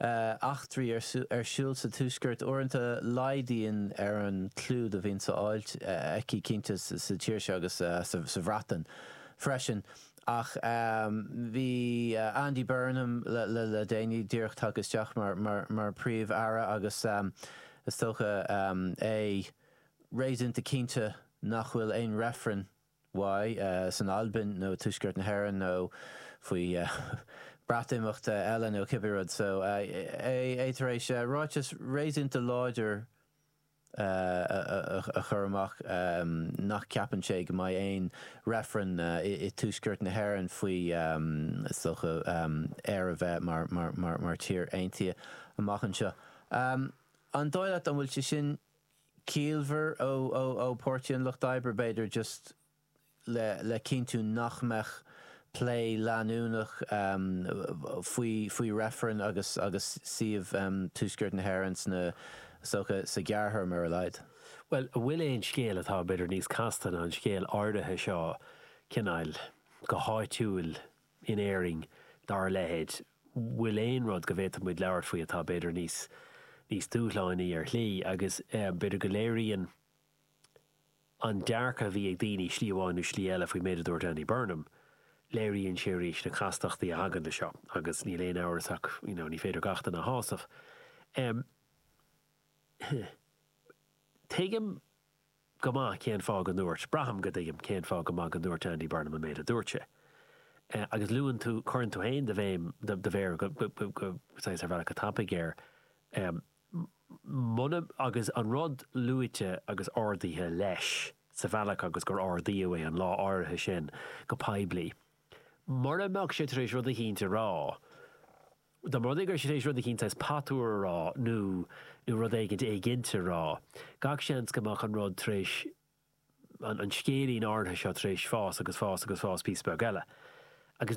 eachtraí ar siúl sa tuaisceart. Uaireanta laghdaíonn ar an gclú do bhíonn á fháil aici cinnte sa tír seo agus sa Bhreatain freisin. Ach bhí Andy Burnham le déanaí díreach tagtha isteach mar Phríomh-Aire agus is dócha é réasúnta cinnte nach bhfuil aon reifreann mhaith, san Albain nó Tuaisceart na hÉireann nó faoi Bhreatimeacht eile nó cibé rud so, tá sé tar éis ráiteas réasúnta láidir a chur amach nach ceapann sé go mbeidh aon reifreann i dTuaisceart na hÉireann faoi is dócha Éire bheith mar tír aontaithe amach anseo. An dóigh leat, an bhfuil sé sin ciallmhar ó Pháirtí an Lucht Oibre, b'fhéidir, just le cinntiú nach mbeadh plé leanúnach faoi, faoi reifreann agus, agus suíomh Tuaisceart na hÉireann is dócha sa ghearrthéarma ar a laghad. Bhuel, an bhfuil aon scéal atá b'fhéidir níos casta ná an scéal áirithe seo, cineáil, go háitiúil, in Éirinn dár leithéid. Bhfuil aon rud go bhféadfadh muid labhairt faoi atá, b'fhéidir, níos, níos dúshlánaí ar shlí agus, b'fhéidir, go léiríonn an dearcadh a bhí ag daoine slí amháin nó slí eile faoin méid a dúirt Andy Burnham, léiríonn sé arís na castachtaí a thagann le seo agus níl aon amhras ach, you know, ní féidir gach duine a shásamh. Em, tuigim go maith cén fáth go ndúirt. Braithim go dtuigim cén fáth go maith go ndúirt Andy Burnham an méid a dúirt sé. Agus luann tú, cuireann tú féin do bhéim,, do mhéar go, saghas, ar bhealach go tapaidh air. Muna, agus an rud luaite agus ardaithe leis sa bhealach agus gur ardaíodh é an lá áirithe sin go poiblí. Mura mbeadh sé tar éis rud eicínt a rá, Dá mba rud é go raibh sé tar éis rud eicínt saghas patuar a rá nó nó rud éigint éiginnte a rá, gach seans go mbeadh an rud tar éis, an scéilín áirithe seo tar éis fás agus fás agus fás píosa beag eile. Agus